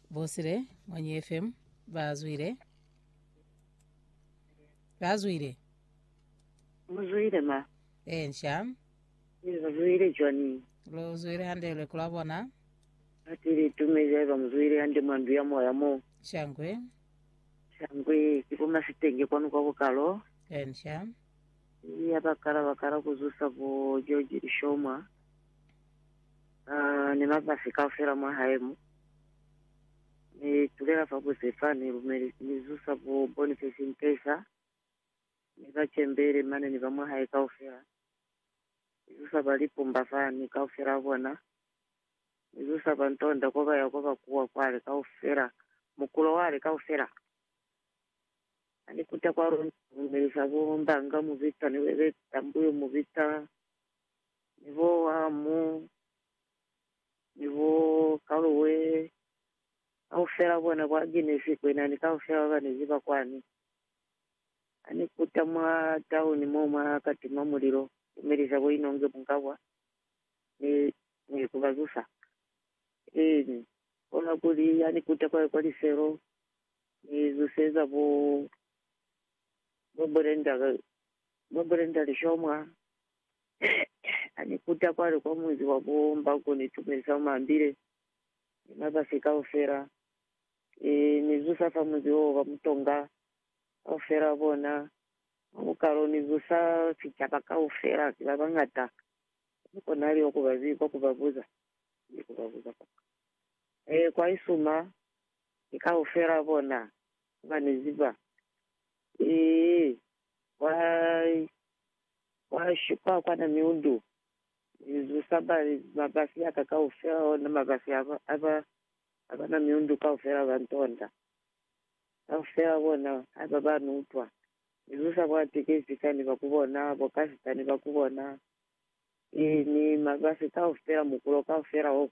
Bosile mwa New FM ba zwile. Ba zwile. Muzwile ma. Eh, nsha. Muzwile Johnny. Lo zwile hande le kula bona. Atili tume jaiba muzwile hande mwa ndu ya moya mo. Shangwe. Shangwe kipuma sitenge kwanu kwa bukalo. Eh, nsha. Iya bakala bakala kuzusa bo George Ishomwa. Aa, ni mabasi kaufela mwa hae mo. Ni tulela fa buze fa, ni lumeli, ni zusa bo Boniface Nkesa, ni ba Chembele mane, ni ba mwa hae kaufela. Ni zusa ba Lipumba fa, ni kaufela a bona. Ni zusa ba Ntonda ko ba ya ko ba kuwa kwale kaufela, mukulo wale kaufela. Ha ni kuta kwalo, ni lumelisa bo Mbanga, mu bita, ni bebeta mbuyo, mu bita ni bo Hamu, ni bo Kaloe, kaufela bona kwa Genesi kwena ni kaufela babanezi ba kwani. Ani kuta mwa tauni mo mwa ka tima mulilo, ku melisa bo Inonge Mungabwa, mi ni ku ba zusa. Eeni, kono kuli ani kuta kwa, kwa liselo, ni zuseza bo, bo Brenda, bo Brenda Lishomwa, Ha ni kuta kwale kwa munzi wa bo Mbako ni tumelisa bo Mambile ni mabasi kaufela. Ki ni zusa fa munzi wo ba Mutonga kaufela wa bona. Mwa bukalo ni zusa sicaba kaufela, ki ba bañata. Ha ni konahali kwa ku ba zibi, kwa ku ba buza. Ni ku ba buza kwa ka. Ee, kwa isuma, ki kaufela wa bona, ha ba ni ziba. Ee, kwa Wa shupa kwa na miundu, mi zusa ba mabasi aka kaufela, ona mabasi a ba ba na miundu kaufela ba ntonda. Kaufela bona ha ba ba ni utwa, mi zusa bo atekesika ni ba ku bona, bo kasita ni ba ku bona, i, ni mabasi kaufela, mukulo kaufela wo,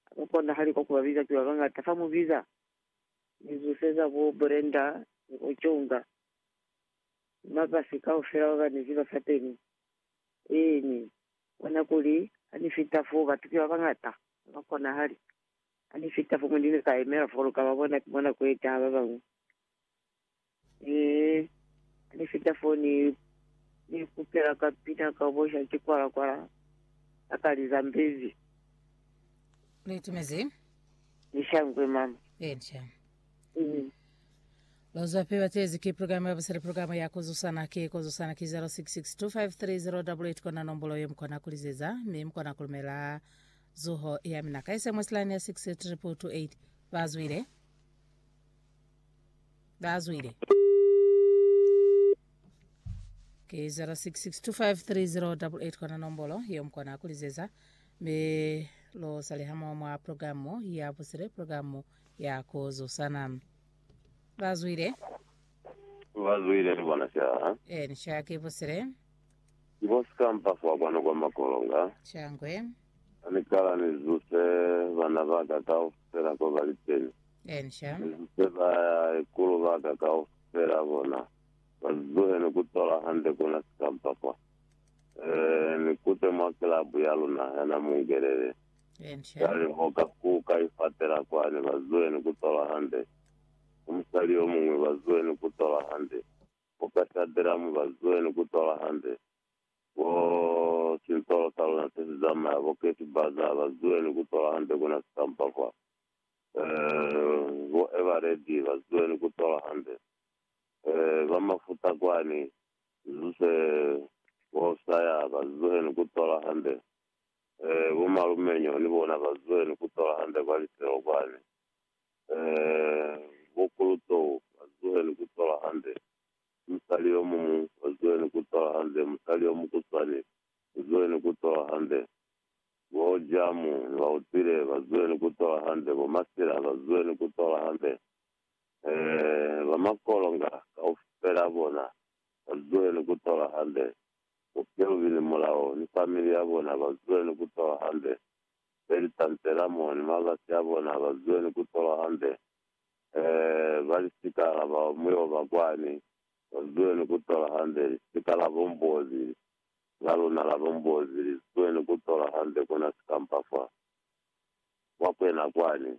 ha ku konahali kwa ku ba biza, ki ba bangata fa mu biza. Mi zuseza bo Brenda ni bo Chunga, mabasi kaufela ba bane ziba sateni ee mi bona kuli ani fita fo batu ki babangata haba konahali ani fita fo moni ni ka emela fo luka ba bona ki mona ku etaha ba bangwe ee ani fita fo ni ni kupela ka pina ka bosha ki kwala kwala akali zambezi Litimezi. ni shangwe mama Eja. Amen. Lozo ape batezi ki programa ya busele programa ya kozusana ki kozusana ki 0662530888 kona nombolo ye mukona kulizeza mi mukona kulumela zuho ya mina ka sms line ya 63228 bazwile bazwile ke 0662530888 kona nombolo ye mukona kulizeza mi lo salihamo mwa programu ya busele programu ya ku zusana. Ba zwile. Ba zwile, ni bona ca. Eni, ca ki busile. Ki bo sikampa fa kwanu kwa makolonga. Ca ngwe. Ha ni kala ni zuse bana ba ka kaufela ko ba li teni. Eni, ca. Ni zuse ba ikulu ba ka kaufela, bona, ba zuhe ni ku tola hande ku na sikampa fa. Ee, ni kute mwa kilabu ya luna, yana mungelele. Cwale ho ka kuka ifatela kwani, bazwenu, ku tola hande. Ni musali yomuñwi, bazwenu, ku tola hande. Ho ka shadelamu, bazwenu, ku tola hande. Bo sintolo sa luna se si zamaya, bo Kate Bazaar, bazwenu, ku tola hande, kuna sitampa fa. Eh, bo Eveready, bazwenu, ku tola hande. Eh, ba mafuta kwani, zuze, bo Sayer, bazwenu, ku tola hande. Ee, bo malume nyo ni bona ba zweli ku tola hande kwa lifelo kwani. Ee, bo kulutou ba zuheli ku tola hande musali yo muñwi, ba zuheli ku tola hande musali yo mukuswani, ba zuheli ku tola hande bo Jamu ni ba utwile, ba zuheli ku tola hande bo Masila, ba zuheli ku tola hande. Ee, ba makolonga kaufela bona ba zuheli ku tola hande. Bo Kelvin Mulao ni family ya bona ba zule ni ku tolwa hande. Beli Tantelamo ni mabasi a bona ba zule ni ku tolwa hande. Ee, ba lisika la ba mu yo ba kwani, ba zule ni ku tolwa hande. Lisika la bo Mbozi, la luna la bo Mbozi, li zule ni ku tolwa hande. Ku na sikampa fa Mokwena kwani.